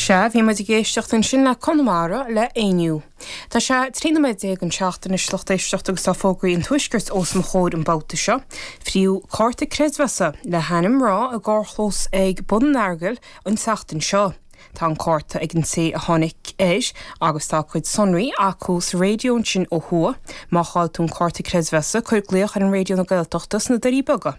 Sea, bhí muid ag éisteacht ansin le Conamara le Éinniú. Tá sé 13 nóiméad chun a seacht anois, lucht éisteachta, agus tá fógraí an tuaiscirt os mo chomhair an babhta seo. Fríothadh cárta creidmheasa le hainm mná i gcarrchlós ag Bun an Eargail an tseachtain seo. Tá an cárta ag an té a tháinig air agus tá a cuid sonraí acu sa raidió ansin ó thuaidh. Má chaill tú an cárta creidmheasa, cuir glaoch ar an Raidió na Gaeltachta sna Doirí Beaga.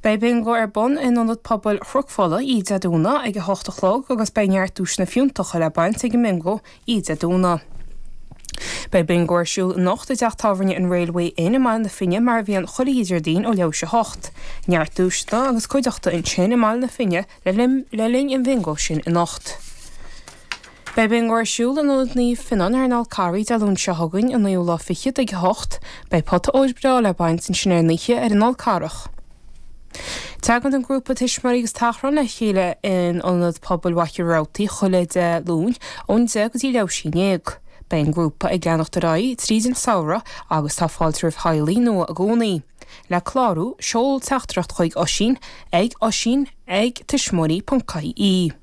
Beidh bingo ar bun in Ionad Pobail Chnoc Fola oíche Dé Domhnaigh ag a hocht a chlog agus beidh neart duaiseanna fiúntacha le baint ag an mbingo oíche Dé Domhnaigh. Beidh bingo ar siúl anocht i dTeach Tábhairne an Railway Inn i mBaile na Finne mar a bhíonn chuile Déardaoin ó leathuair tar éis a hocht. Neart duaiseanna agus cuideachta ansin i mBaile na Finne le linn an bhingo sin anocht. Beidh bingo ar siúl in Ionad Naomh Fionnán ar an Fhál Carrach Dé Luain seo chugainn, an naoú lá fichead ag a hocht. Beidh pota óir breá le baint ansin ar an oíche ar an Fhál Carrach. Tagann an grúpa tuismitheoirí agus tachrán le chéile in Ionad Pobail Mhachaire Rabhartaigh chuile Dé Luain ón deich go dtí leathuair tar éis a haon déag. Beidh an grúpa ag leanacht ar aghaidh tríd an samhradh agus tá fáilte roimh theaghlaigh nua i gcónaí. Le clárú, seol teachtaireacht chuig Oisín ag oisín ag tuismitheoirí.ie.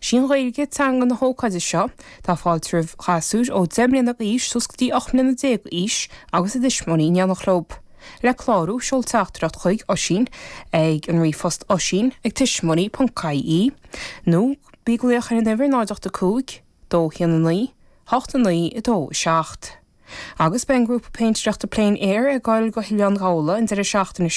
Is í an Ghaeilge teanga na hócáide seo. Tá fáilte roimh ghasúir ó 10 mbliana d'aois suas go dtí 18 mbliana d'aois agus a dtuismitheoirí in éineacht leob. Le clárú, seol teachtaireacht chuig Oisín ag an ríomhphost oisín ag tuismitheoirí.ie nó bí ag glaoch ar an uimhir 085 219 89 27. Agus beidh an grúpa péintéireachta Plein Air ag gabháil go hOileán Ghabhla an deireadh seachtaine seo.